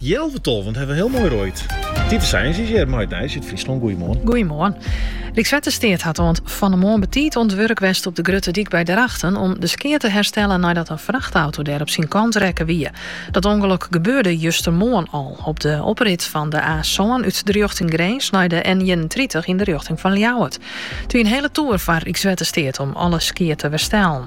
Healwei tolven ha we hiel moai roaid. Tiete Sijens is hjir mei it nijs út Fryslân. Goeiemoarn. Goeiemoarn. Rykswettersteat hat oant fan 'e moarn betiid oan it wurk west op de Grutte Dyk by Drachten om de skea te herstellen neidat in frachtauto dêr op syn kant rekke wie. Dat ûngelok gebeurde justermoarn al op de oprit fan de A sân út de rjochting Grins nei de N ienentritich yn de rjochting fan Ljouwert. It wie in hele toer foar Rykswettersteat om alle skea te werstellen.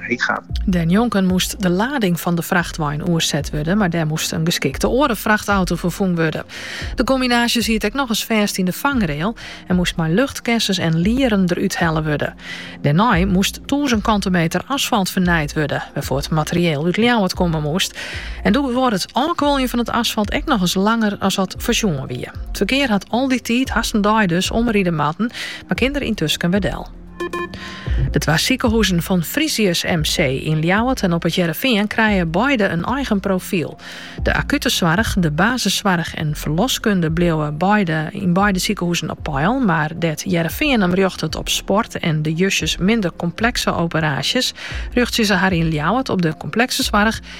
heech hat. Dêrnjonken moast de lading fan de frachtwein oerset wurde, mar dêr moast in geskikte oare frachtauto foar fûn wurde. De kombinaasje siet ek nochris fêst yn de fangrail en moast mei luchtkessens en lieren derút helle wurde. Dêrnei moast tûzen kante meter asfalt fernijd wurde, wêrfoar't materieel út Ljouwert komme moast. En duorre it ôfkuoljen fan it asfalt ek nochris langer as wat foarsjoen wie. It ferkear hat al dy tiid, hast in dei dus, omride moatten, mar kin der yntusken wer del. De twa sikehûzen fan Frisius MC yn Ljouwert en op it Hearrenfean krije beide in eigen profyl. De akute soarch, de basissoarch en ferloskunde bliuwe beide yn beide sikehûzen op peil, mar dêr't Hearrenfean him rjochtet op sport en de justjes minder komplekse operaasjes, rjochtsje se har yn Ljouwert op de komplekse soarch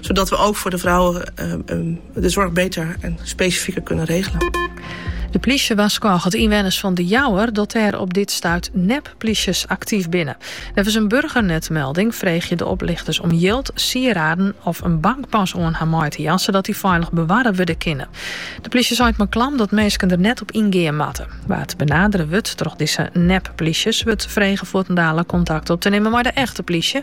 Zodat we ook voor de vrouwen de zorg beter en specifieker kunnen regelen. De plysje warskôget ynwenners fan De Jouwer dat der op dit stuit nep-plysjes aktyf binnen. Neffens in burgernetmelding freegje de oplichters om jild, sieraden of in bankpas oan har mei te jaan, sadat dy feilich bewarre wurde kinne. De plysje seit mei klam dat minsken er net op ingean moatte. Wa't benadere wurdt troch dizze nep-plysjes, wurdt frege fuortendaliks kontakt op te nimmen mei de echte plysje.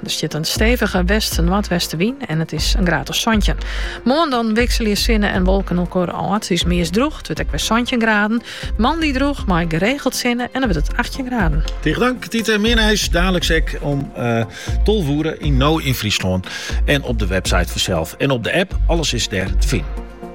Der stiet in stevige west-noardwestenwyn en it is in graad of santjin. Moarn dan wikselje sinne en wolken elkoar ôf. It is meast droech, it wurdt ek wer santjin graden. Moandei droech, mei geregeld sinne en dan wurdt het 18 graden. Tige dank, Tiete. Mear nijs dadeliks ek om uh, eh, tolve oere yn No yn Fryslân. En op de website fansels. En op de app, alles is dêr te finen.